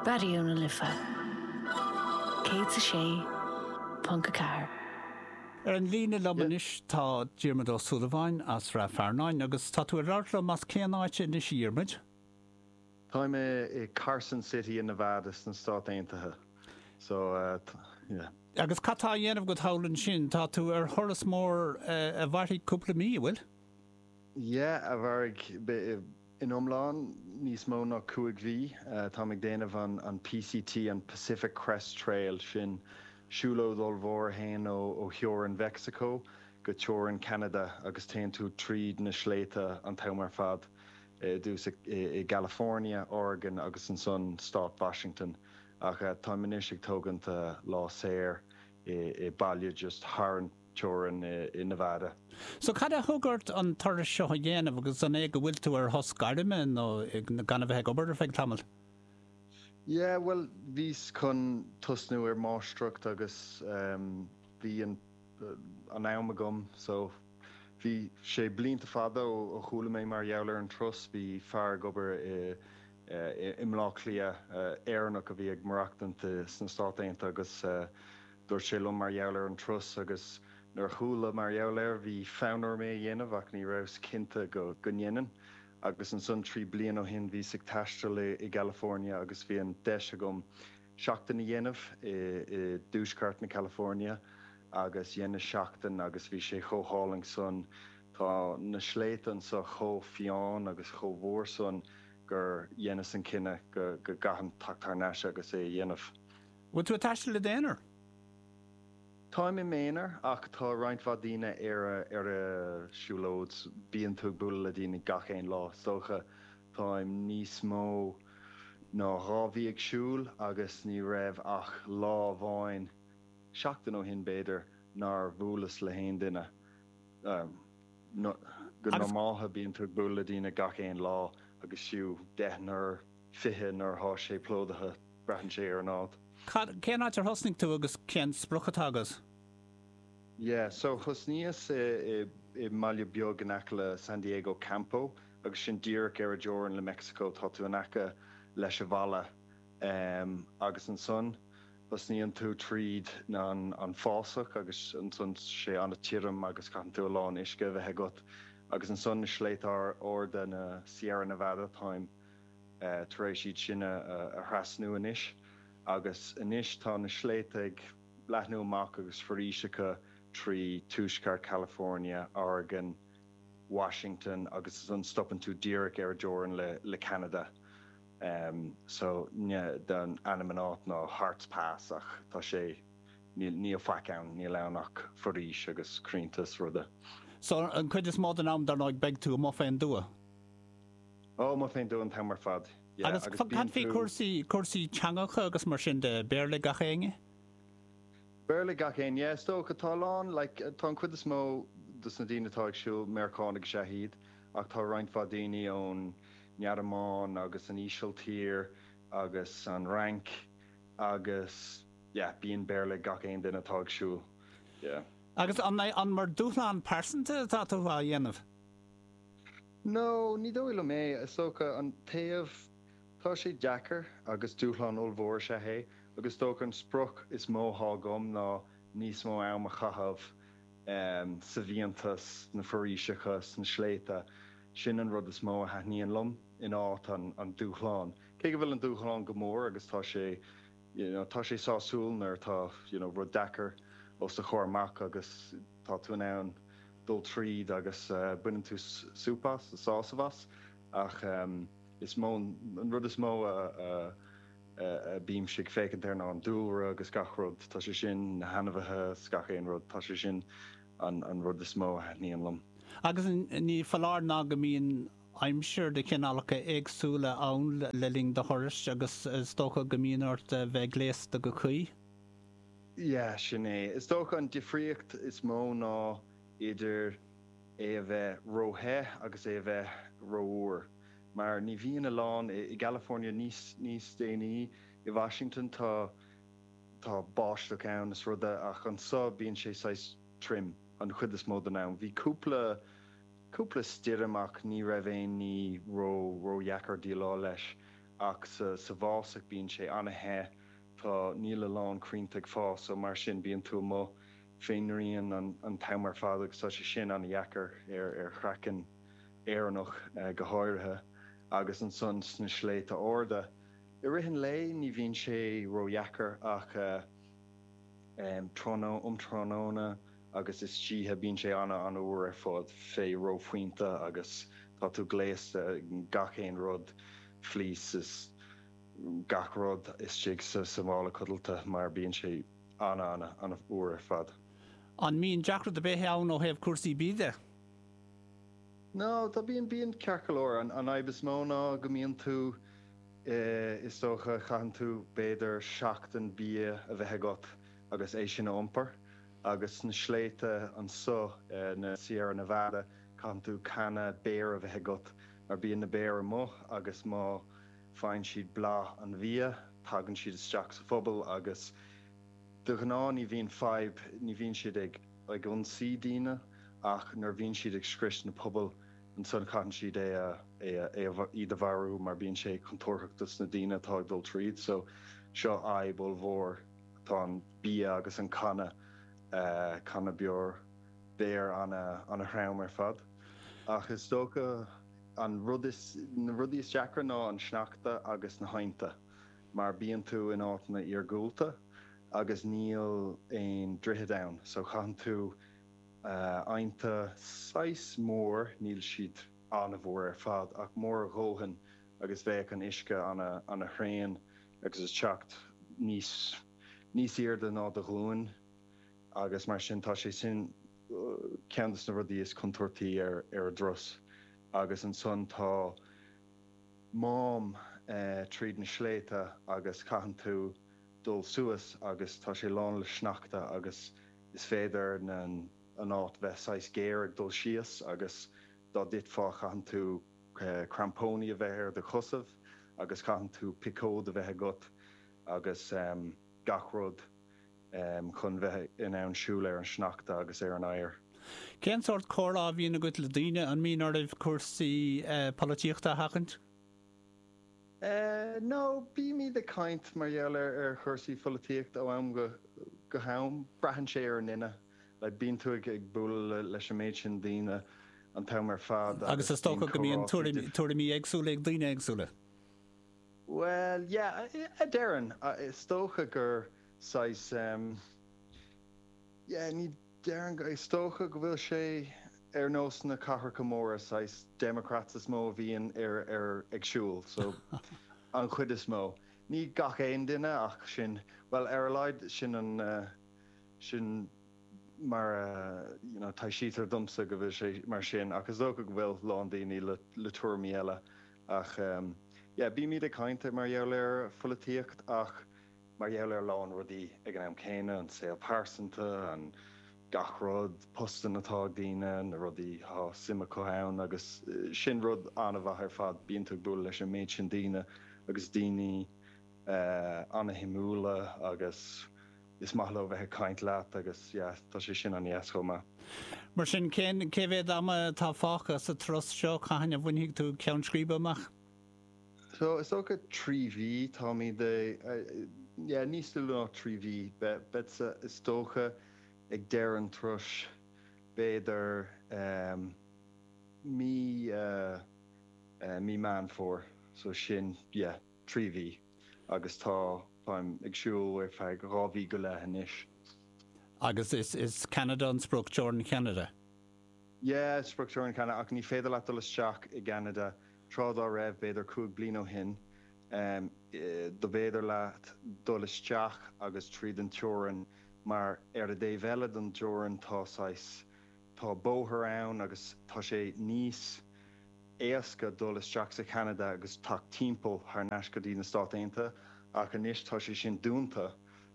Raidió na Life 106.4. Ar an líne liom anois tá Diarmaid Ó Súilleabháin as Rath Fearnáin agus tá tú ag labhairt liom as cén áit anois a Dhiarmaid? Táim i Carson City i Nevada sna Stáit Aontaithe so yeah. Agus cad tá á dhéanamh agat thall ansin? Tá tú ar thuras mór a mhairfidh cúpla mí, an bhfuil? Yeah, a mhairfidh In iomlán, níos mó ná cúig mhí, táim ag déanamh an PCT, an Pacific Crest Trail, sin siúlóid ollmhór a théann ó theorainn Mheicsiceo go teorainn Cheanada agus téann tú tríd na sléibhte an t-am ar fad, i dtúis i gCalifornia, Oregon agus ansan Stát Washington. Ach táim anois ag tógaint lá saor i mbaile just thar an. teorainn i Nevada. So cad a thug ort an turas seo a dhéanamh agus an é go bhfuil tú ar shos gairme nó gan a bheith ag obair ar feadh tamaill? Yeah, bhuel, bhíos chun tosnú ar máistreacht agus bhí an an am agam so bhí sé, blianta fada ó chuala mé mar gheall ar an turas, bhí fear ag obair i i mBleá Cliath, Éireannach a bhí ag maireachtaint sna Stáit Aontaithe agus. Dúirt sé liom mar gheall ar an turas agus nuair a chuala mar gheall air, bhí fonn orm é a dhéanamh ach ní rabhas cinnte go go ndéanfainn. Agus ansan trí bliana ó shin bhíos ag taisteal i i gCalifornia agus bhí an deis agam seachtain a dhéanamh i i dtuaisceart na California agus dheineas seachtain agus bhí sé chomh hálainn san, tá na sléibhte anso chomh fiáin agus chomh mór san gur dheineas an cinneadh go go gcaithfinn teacht thar n-ais agus é a dhéanamh. Bhfuil tú ag taisteal i d'aonar? Táim i m'aonar ach tá roinnt mhaith daoine ar an siúlóid. Bíonn tú ag bualadh le daoine gach aon lá, is dócha. Táim níos mó ná dhá mhí ag siúl agus ní raibh ach lá amháin, seachtain ó shin b'fhéidir, nár bhuaileas le haon duine. Go normaltha bíonn tú ag bualadh le daoine gach aon lá agus fiú deichniúr 20 nuair atá sé plódaithe, braitheann sé ar an áit. Cad, cén áit ar thosnaigh tú agus cén sprioc atá agat? Yeah, so thosnaíos i, i, i mbaile beag in aice le San Diego, Campo, agus sin díreach ar an dteorainn le Meicsiceo, tá tú in aice leis an bhfalla ehm agus ansan thosnaíonn tú tríd an, an fásach agus ansan tá sé ana-thirim agus caitheann tú a lán uisce a bheith agat agus ansan na sléibhte arda, na Sierra Nevada, táim. tar éis iad sin a thrasnú anois agus anois tá na sléibhte ag leathnú amach agus foraoiseacha trí Tuaisceart Chalifornia, Oregon, Washington agus ansan stopann tú díreach ar an dteorainn le Ceanada. So ainm an áit ná Harts Pass ach tá sé, níl faic ann, níl ann ach foraois agus crainnte is rudaí. So an chuid is mó den am dar ndóigh beidh tú amuigh fén dtuath? Ó, amuigh fén dtuath an t-am ar fad. Yeah, Agus agus cad faoi cúrsaí, cúrsaí teanga agus mar sin de, Béarla ag gach éinne? Béarla ag gach éinne, yeah, is dócha. Tá a lán, like, tá an chuid is mó dos na daoine atá ag siúl, Meiriceánaigh is ea iad, ach tá roinnt mhaith daoine ón nGearmáin agus an Ísiltír agus an Fhrainc agus, yeah, bíonn Béarla ag gach aon duine atá ag siúl, yeah. Agus an é, an mar dúshlán pearsanta atá tú á dhéanamh? No, ní dóigh liom é. Is dócha an taobh. Tá sé deacair agus dúshlán ollmhór is ea é agus is dócha an sprioc is mó atá agam ná níos mó ama a chaitheamh sa bhfiántas, sna foraoiseacha, sna sléibhte. Sin an rud is mó a thaitníonn liom in áit an dúshláin. Cé go bhfuil an dúshlán mór agus tá sé, you know, tá sé sásúil nuair atá, you know, rud deacair os do chomhair amach agus, Tá tú in ann dul tríd agus baineann tú súp as, sásamh as, ach is mó, an rud is mó a bímse ag féachaint air ná an dúlra agus gach rud, tá sé sin, na hainmhithe is gach aon rud, tá sé sin an rud is mó a thaitníonn liom. Agus ní foláir ná go mbíonn aimsir de chineálacha éagsúla ann le linn do thurais agus is dócha go mbíonn ort bheith gléasta go cuí. Yeah, sin é. Is dócha an difríocht is mó ná idir é a bheith ró-the agus é a bheith rófhuar. Mar ní bhíonn a lán i gCalifornia. Níos, níos déanaí i Washington tá, tá báisteach ann is rudaí, ach anseo bíonn sé saghas trim an chuid is mó den am. Bhí cúpla, cúpla stoirm ach ní raibh aon ní ró, ródheacair déileáil leis. Ach sa, sa bhfásach bíonn sé an-the. Tá, níl a lán crainnte ag fás so mar sin bíonn tú amuigh fén ngrian an t-am ar fad agus tá sé sin an-dheacair ar ar chraiceann Éireannach go háirithe agus ansan sna sléibhte arda i rith an lae ní bhíonn sé ró-dheacair ach um tráthnóna, um tráthnóna agus istoíche bíonn sé ana an-fhuar ar fad fé reophointe agus tá tú gléasta i ngach aon rud fleeces. gach rud istigh sa mhála codlata mar bíonn sé an-an-an-fhuar ar fad. An mbíonn deacracht ar bith ann ó thaobh cúrsaí bídh de? No, tá, bíonn, bíonn ceart go leor. An fhadhb is mó ná go mbíonn tú, is dócha, caitheann tú b'fhéidir seachtain bia a bheith agat agus é sin a iompar agus sna sléibhte anseo, na Sierra Nevada, caitheann tú canna béir a bheith agat mar bíonn na béir amuigh agus má, Faigheann siad boladh an bhia, tagann siad isteach sa phuball agus de ghnáth ní bhíonn fadhb, ní bhíonn siad ag ionsaí daoine ach nuair a bhíonn siad ag scrios na pubaill, ansan caitheann siad é a, é a, é a, iad a mharú mar bíonn sé contúirtheach dos na daoine atá ag dul tríd. So, seo fadhb ollmhór atá an bia agus an canna, canna beoir, béir ana, ana throm ar fad. Ach is dócha, An rud is, na rudaí is deacra ná an sneachta agus na haibhnte, mar bíonn tú in áiteanna iargúlta agus níl aon droichead ann, so caitheann tú aibhnte saghas mór, níl siad an-mhór ar fad, ach mór a dhóthain agus bheadh an uisce ana thréan agus teacht níos airde ná do ghlúin. agus mar sin tá sé sin ceann dos na rudaí is contúirtí ar an dturas agus ansan tá mám tríd na sléibhte agus caitheann tú dul suas agus tá sé lán le sneachta agus is féidir an áit bheith saghas géar ag dul síos agus dá dtitfeá caitheann tú crampóiní a bheith ar do chosaibh agus caitheann tú piocóid a bheith agat agus gach rud. chun bheith in ann siúl ar an sneachta agus ar an oighear. Cén sórt comhrá a bhíonn agat le daoine? An mbíonn oraibh cúrsaí polaitíochta a sheachaint? No, bímid ag caint mar gheall ar chúrsaí polaitíochta ó am go ham. Braitheann sé ar an duine. Bíonn tú ag bualadh leis an méid sin daoine an t-am ar fad agus bíonn comhrá fíor. Agus is dócha go mbíonn tuairimí éagsúla ag daoine éagsúla? Bhuel, yeah, a déarfainn. Is dócha gur saghas em, yeah, ní déarfainn go, is dócha go bhfuil sé ar nós na cathracha móra, saghas democrats is mó a bhíonn ar, ar, ag siúl, so, an chuid is mó. Ní gach aon duine ach sin, bhuel, ar a laghad sin an, sin mar a, you know, taibhsítear domsa go bhfuil sé mar sin ach is dócha go bhfuil lán daoine le, le tuairimí eile. Ach yeah, bímid ag caint mar gheall ar pholaitíocht ach mar gheall ar a lán rudaí ag an am céanna, an saol pearsanta, an gach rud, postanna atá ag daoine, na rudaí atá suim acu iontu agus sin rud an-mhaith ar fad, bíonn tú ag bualadh leis an méid sin daoine agus daoine an-shuimiúla agus. Is maith leo bheith ag caint leat agus yeah tá sé sin an-deas chomh maith. Mar sin, cé mhéad ama atá fágtha sa turas seo? Cathain a bhainfidh tú ceann scríbe amach? So, is dócha trí mhí, táimid yeah níos lú ná trí mhí, beadsa is dócha ag deireadh an turais, b'fhéidir mí Mí Meán Fómhair, so sin yeah. trí mhí agus tá, táim ag siúl ar feadh dhá mhí go leith anois. Agus is, is Ceanada an sprioc, teorainn Cheanada? Yeah, sprioc teorainn Cheanada ach ní féidir leat dul isteach i gCeanada, tráth dá raibh, b'fhéidir cúig bliana ó shin, em, do b'fhéidir leat dul isteach agus tríd an teorainn mar ar a' dtaobh eile don teorainn tá saghas, Tá bóthar ann agus tá sé níos éasca dul isteach sa Cheanada agus teacht timpeall thar n-ais go dtí na Stáit Aontaithe ach anois tá sé sin dúnta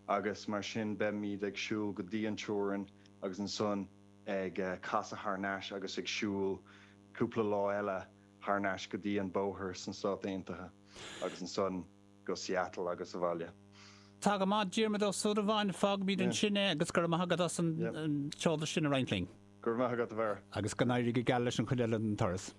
agus mar sin beimid ag siúl go dtí an teorainn agus ansan ag casadh thar n-ais agus ag siúl cúpla lá eile thar n-ais go dtí an bóthar sna Stáit Aontaithe agus ansan go Seattle agus abhaile. Tá go maith, Diarmaid Ó Súilleabháin, fágfaimid ansin é agus go raibh maith agat as an eolas sin a roinnt linn. Go raibh maith agat, a Bharra. Agus go n-éirí go geal leis an chuid eile den turas.